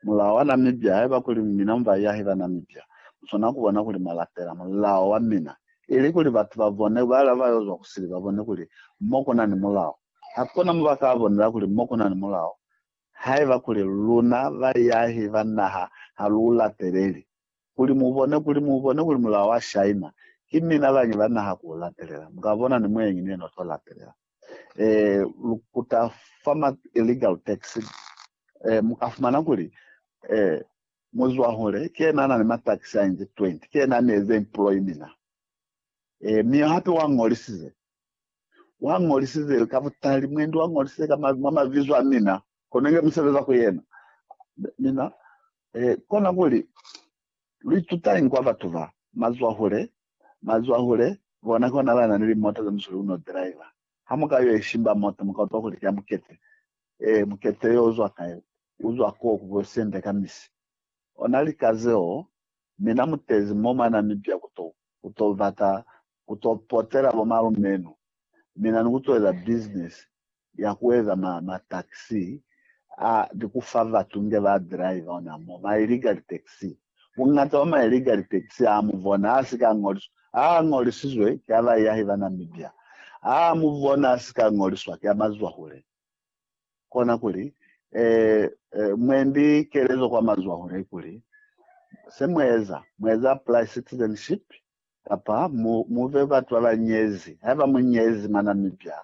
Mulao wa Namibia, Haiba kuli mina mu baiahi ba Namibia, mu swana ku bona kuli mwa lapela mulao wa mina, ili kuli batu ba bone, bala ba yo zwa ku sili, ba bone kuli mo ku na ni mulao. Ha ku na mo ba ka bonela kuli mo ku na ni mulao, haiba kuli luna baiahi ba naha ha lu u lapeleli. Kuli mu bone, kuli mu bone kuli mulao wa shaima, ki mina bañi ba naha ku u lapelela. Mu ka bona ni muenyi ni yena u to lapelela. eh, lu kuta fa ma illegal tax eh, muka fumana kuli eh, muzwahule ke yena ana ni ma tax a inzi 20 ke yena ni eze employ mina eh, mi hape wa ngolisize wa ngolisize ka butali mwendi wa ngolisize ka ma mavizo a mina konenge musebeza ku yena mina eh, kona kuli Luitutañi kwa batu ba mazwahule? Mazwahule bona ki ona banani limota ze musuli uno driver. Ha muka yo ishimba mota, muka utwa kuli ki ya mukete. Ee, mukete yo uzwa kai? Uzwa koo ku bo Siende ka misi. Ona lika zeo, mina mutezi mo mwa Namibia kuto, kuto bata ku to potela bo malume nu. Mina ni ku to eza business ya ku eza ma, ma taxi a, ni ku fa batu nge ba drive ona mo, ma illegal taxi. Bungata bwa ma illegal taxi a mu bona a si ka ngoliswa, a a ngolisizwe ki a baiahi ba Namibia, a a mu bona a si ka ngoliswa ki a mazwahule. kona kuli e, e, mwendi kelezo kwa mazwaho ne kuli, se mueza, mueza apply citizenship kapa mu, muve batu ba ba nyezi. Haiba mu nyezi mwa Namibia,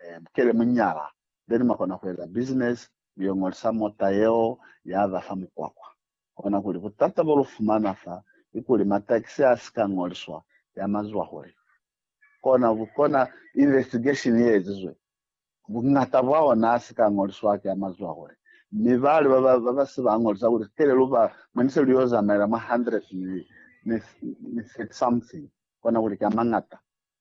e, kele mu nyala, then mwa kona kueza business, mu yo ngolisa mota yeo ya ba fa mukwakwa. Kona kuli butata bo lu fumana fa ki kuli mataxi a si ka ngoliswa ya mazwahole. Kona, kona investigation ye ezizwe Buñata bwa ona a si ka ñoliswa ki amazwahule, mi bali ba ba si ba ñolisa kuli sitele lu ba mwa ni se lu yo zamaela mwa hundred ni thirty something, kona kuli ki amañata.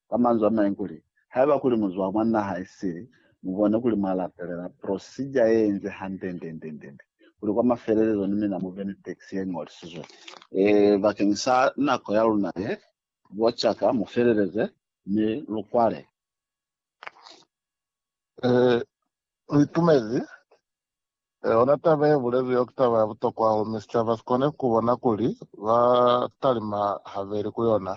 Ka manzwi amañwi kuli, haiba kuli mu zwa mwa naha i sili, mu bone kuli mwa latelela procedure ye inzi hande ndendendende kuli kwa mafelelezo ni mina mu be ni tax ye ñolisizwe. E, bakeng sa nako ya luna ye, bo caka mu feleleze mi lu kwale. Eh, u itumezi. Eh, hona taba ye bulezwi yo ki taba ya butokwa hahulu, mi sicaba si kone ku bona kuli ba talima habeli ku yona,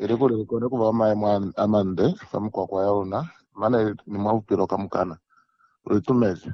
ili kuli li kone ku ba mwa maemo a, a mande fa mikwakwa ya luna, mane ni mwa bupilo kamukana. U itumezi.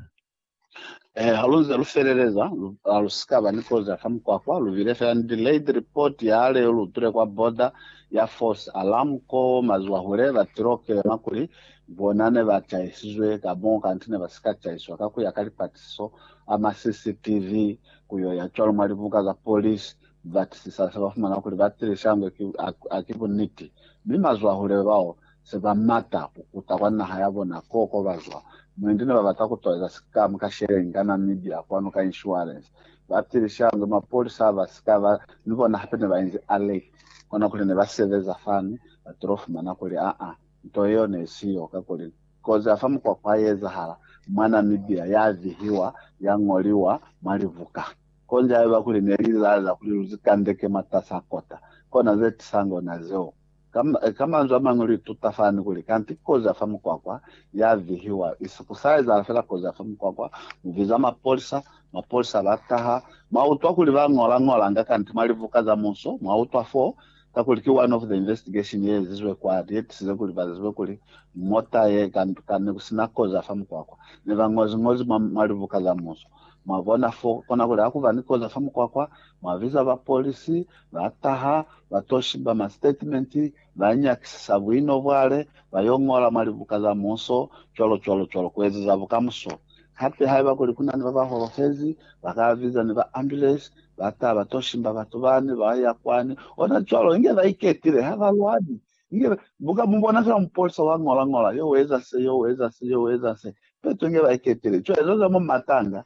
Eh, halunze lufeleleza, lu, alusikaba ni kozi afa mukwakwa, lubile fela ni delayed report ya leo lutule kwa border ya false alarm ko mazuwa hule batilo kelema kuli bona ne ba chaisizwe ka mo kanti ne basika chaiswa ka kuya ka lipatisiso a ma CCTV kuyo ya cwalo mwa libuka za police batisisa se bafumana kuli batili shangwe ki, a, a ki buniti mi mazuwa hule bao se ba mata ku kuta kwa naha ya bona koo ko ba zwa. Mwendi ne ba bata ku toleza sikamu ka sheleni ka Namibia kwanu ka inshuwalensi. Ba tilishange mapolisa ba si ka ba ni bona hape ne ba inzi alert. Kona kuli ne ba sebeza fani, ba tilo fumana kuli aa, nto yeo ne i si yo. Kakuli kozi ya fa mukwakwa i ezahala mwa Namibia, ya vihiwa, ya ñoliwa mwa libuka. Kozi haiba kuli ne li izahalela kuli lu si kandeke mwatas'a kota, kona ze tisange ona zeo. Ka manzwi amañwi, lu ituta fani kuli kanti kozi ya fa mukwakwa ya vihiwa isi ku sa ezahala fela kozi ya fa mukwakwa. Mu biza mapolisa, mapolisa ba taha. Mwa utwa kuli ba ñola-ñolanga kanti mwa libuka za muso, mwa utwa fo, kakuli ki one of the investigation ye ezizwe kwani ye tisize kuli ba zibe kuli mota ye kanduka ne ku si na kozi ya fa mukwakwa. Ne ba ñozi-ñozi mwa libuka za muso. Mwa bona fo, kona kuli ha ku ba ni kozi ya fa mukwakwa, mwa biza bapolisi, Ba taha, ba to shiba ma statement, ba nyakisisa buino bwale, ba yo ngola mwa libuka za muso, cwalo cwalo cwalo, ku ezeza bukamuso. Hape haiba kuli ku na ni ba ba holofezi, ba ka biza ni ba ambulance, ba taha ba to shimba batu bani, ba ya kwani, ona cwalo, inge ba iketile, ha ba lwali. Inge ba, bu ka mu bona fela mupolisa wa ngola ngola, yo u eza se, yo u eza se, yo u eza se, peto inge ba iketile. Cwale, za za mwa matanga,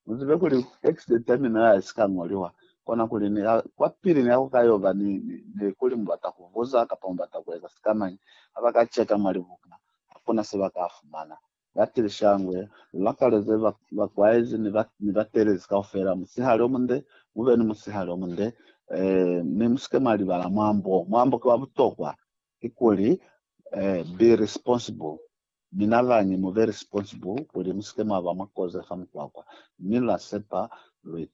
Muzibe kuli accident ya mina ha isika ngoliwa, kona kuli ni ka, kwa pili ni ka ku ka yoba ni, ni, ni kuli mu bata ku buza kapa mu bata ku eza sikamañi. Ha ba ka cheka mwa libuka, ha ku na se ba ka fumana. Ba tili shangwe, lu lakaleze ba, bakwaezi ni, ba, ni batelezi kaufela, musihali o munde, mu be ni musihali o munde. Eh, mi mu si ke mwa libala mwambo. Mwambo ki wa butokwa. Kikuli, eh, be responsible. Mina lañi mu be responsible kuli musike mwaba mwa koze fa mukwakwa, mi lwa sepa lwitumelo.